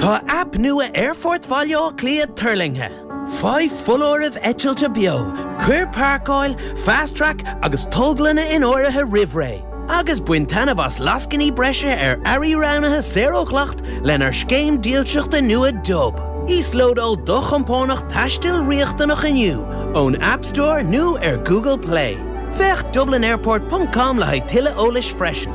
Tá aip nua Aerfort Bhaile Átha Cliath tuirlingthe. Faigh foláirimh eitilte beo, cuir páirceáil, Fast Track agus tolglanna in áirithe roimh ré, agus bain taitneamh as lascainí breise ar earraí roghnaithe saor ó dhleacht lenár scéim dílseachta nua Dub. Íoslódáil do chompánach taistil riachtanach inniu ón App Store nó ar Google Play. Féach dublinairport.com le haghaidh tuilleadh eolais freisin.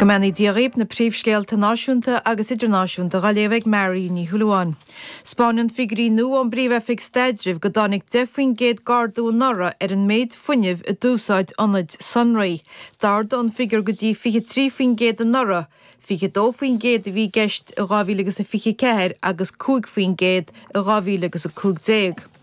Go mbeannaí Dia dhaoibh na príomhscéalta náisiúnta agus idirnáisiúnta dhá léamh ag Mary Ní Shúilleabháin. 'Spáineann figuirí nua ón bPríomh-Oifig Staidrimh go dtáinig 10 faoin gcéad g'ardú anuraidh ar an méid fuinnimh a d'úsáid ionaid sonraí. D'ardaigh an figiúr go dtí 23 faoin gcéad anuraidh, 22 faoin gcéad a bhí i gceist i 2024 agus 5 faoin gcéad i 2015.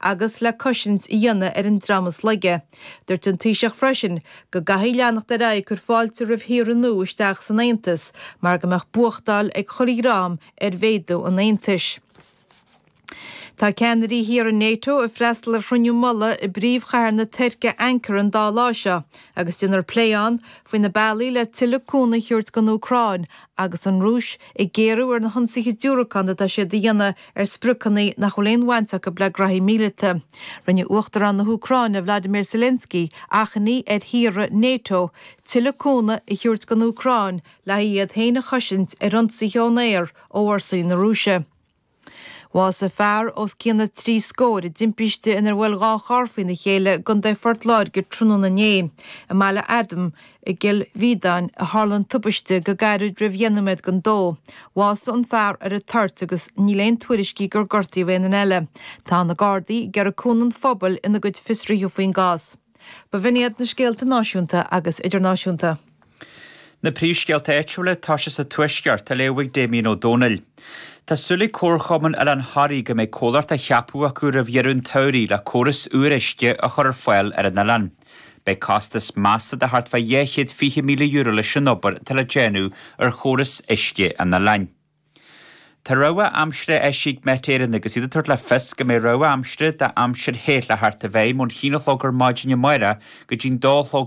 agus le cosaint a dhéanamh ar an dream is laige. Dúirt an Taoiseach freisin go gcaithfidh leanacht ar aghaidh cur fáilte roimh thíortha nua isteach san Aontas mar go mbeadh buachtáil ag chuile dhream ar mhéadú an Aontais. Tá ceannairí thíortha NATO ag freastal ar chruinniú mullaigh i bpríomhchathair na Tuirce Ankara an dá lá seo agus déanfar plé ann faoi na bealaí le tuilleadh cúnaimh a thabhairt don Úcráin Agus an Rúis ag géarú ar na hionsaithe diúracán atá siad a dhéanamh ar spriocanna nach bhfuil aon bhaint acu le graithí míleata, rinne Uachtarán na hÚcráine, Vladimir Zelensky, achainí ar thíortha NATO tuilleadh cúnamh a thabhairt don Úcráin le haghaidh iad féin a chosaint ar ionsaithe ón aer ó fhórsaí na Rúise. Bhásaigh fear os cionn na trí scór i dtimpiste inar bhuail dhá charr faoina chéile i gContae Phort Láirge tráthnóna inné. I mBaile Adaim i gCill Mhíodáin a tharla an tubaiste go gairid roimh dheich nóiméad gon 2. Bhásaigh an fear ar an toirt agus níl aon tuairiscí gur gortaíodh aon duine eile. Tá na Gardaí ag iarraidh cúnamh an phobail ina gcuid fiosruithe faoin gcás. B'in iad na scéalta náisiúnta agus idirnáisiúnta. Na príomhscéalta áitiúla tosóidh sa Tuaisceart á léamh ag Damien Ó Dónaill. Tá súil ag Comharchumann Oileán Thoraí go mbeidh comhlacht ceaptha acu roimh dheireadh an tsamhraidh le córas úr uisce a chur ar fáil ar an oileán. Beidh costas measta de thart fá dhá chéad fiche míle euro leis an obair atá le déanamh ar chóras uisce an oileáin. Tá rabhadh aimsire eisithe ag Met Éireann agus iad ag tabhairt le fios go mbeidh rabhadh aimsire d'aimsir the le theacht i bhfeidhm ón haon a chlog ar maidin amárach go dtí'n dó a chlog